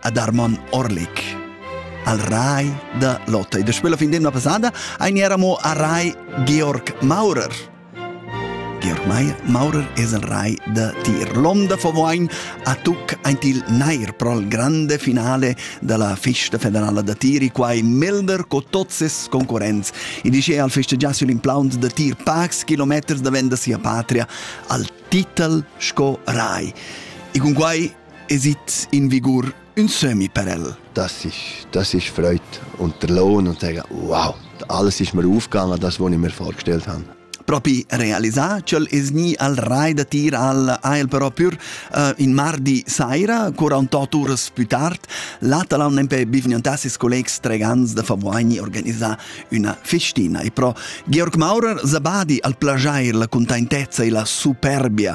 ad Armon Orlik. Al rai da Lotte. E da spela fin d'emna passada ein eramo a rai Georg Maurer. Georg Meier Maurer es el rai da tir. L'onda favoin a tuc aint il nair pro il grande finale della festa federala da tiri, quai Melder co tots ses concorrents. E dice al festeggiassi l'implaunt da tir pax kilometers davent da sia patria al titel sco rai. E con quai esit in vigur ün sömmi per el. Das ist, das ist Freude. Und der Lohn und sagen, wow, alles ist mir aufgegangen, das, was ich mir vorgestellt habe. Propi realisà ch'el es gni al rai da tir al Ail però pür uh, in mardi saira, cura un tot uras più tard, l'Atalon empè bivgnantas ses collegs tregans da Favoigni organisà üna festina e pro Georg Maurer Zabadi al plajair la contentezza e la superbia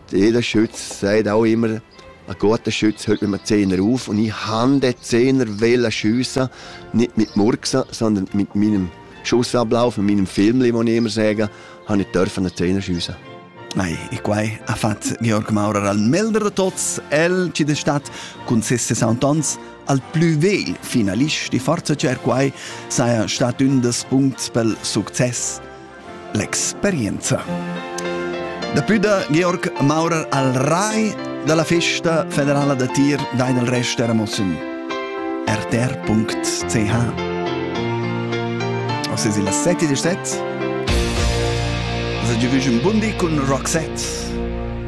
Jeder Schütz sagt auch immer, ein guter Schütz hält mit einem Zehner auf und ich habe den Zehner wollen schiessen, nicht mit Murksen, sondern mit meinem Schussablauf, mit meinem Film, muss ich immer sagen, habe ich dürfen einen Zehner schiessen. Nei, e quai ha fatto Georg Maurer al Melder de Tots, el ci de stat cun ses 60 ans al plü vegl finalist e forza cer quai saja stat ün des punts pel success L'experienza. Daplü da Georg Maurer al rai dalla festa federala da tir dai del rest eramos in rtr.ch. Osse si la sette di set. Sa giovüge un bundi cun Roxette.